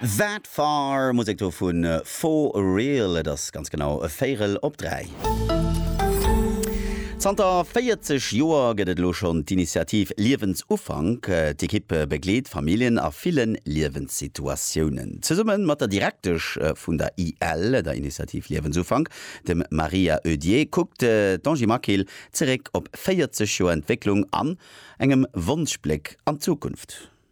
That Far, Musek do vu For Real. Et ass ganz genau e Véirel op dräi. Zanter 40 Joer gëtt et elo schonn d'Initiativ Liewensufank. D'Ekipp begleet Familljen a ville Liewenssituatiounen. Zesumme mat der Direktesch vun der IL, der Initiativ Liewensufank, dem Maria Oedier, kuckt d'Angie Maquil zeréck op 40 Joer Entwécklung an engem Wonschbléck an d'Zukunft.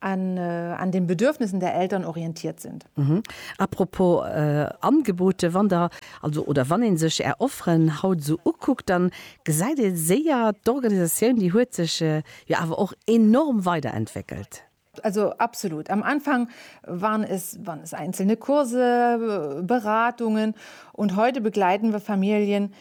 an an den Bedürfnissen der Eltern orientiert sind. Mhm. Apropos äh, Angebote, wann der also oder wann een sech är Offeren haut esou ukuckt, dann gesäit ee séier, d'Organisatioun déi huet sech äh, jo awer och enorm weiderentwéckelt. Also absolut. Am Anfang waren es waren es einzelne Kurse, Beratungen und heute begleiten wir Familien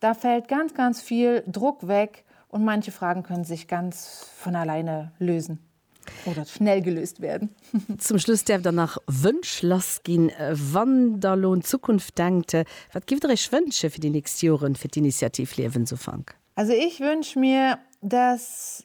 Da fällt ganz ganz viel Druck weg und manche Fragen können sich ganz von alleine lösen oder schnell gelöst werden. Zum Schluss därft der nach Wënsch lass gin. Wann der lo un d'Zukunft denkt, wat gifft der iech wënsche fir déi nächst Joren fir d'Initiativ Liewensufank? Also ich wënsch mir, dass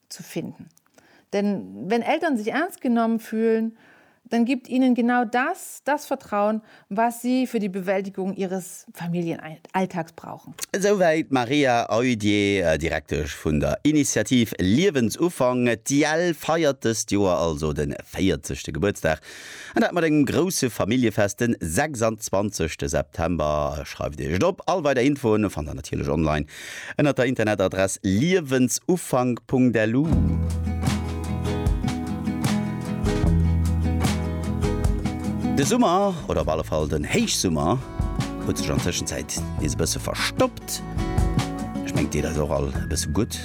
zu finden denn wenn Eltern sich ernst genommen fühlen dann gibt ihnen genau das das Vertrauen was sie für die Bewältigung ihres Familienalltags brauchen. Esouwäit d'Maria Oeidje, Direktesch vun der Initiativ Liewensufank. D'IEL feiert dëst Joer also de 40. Gebuertsdag an dat mat engem grousse Familljefest de 26. September. Schreift Iech et op, all weider Infoen fannt der natierlech online. Ënnert der Internetadress liewensufank.lu. De Summer, oder op alle Fall den Héichsummer, huet sech an Tëschenzäit nees e bësse verstoppt. Ech mengt deet eis och all e bësse gutt.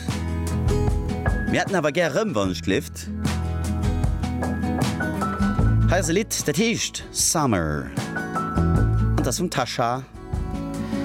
Mir hätten awer gär rëm, wann et gleeft. Hei ass e Lidd, dat heescht Summer an t'ass vum Tasha.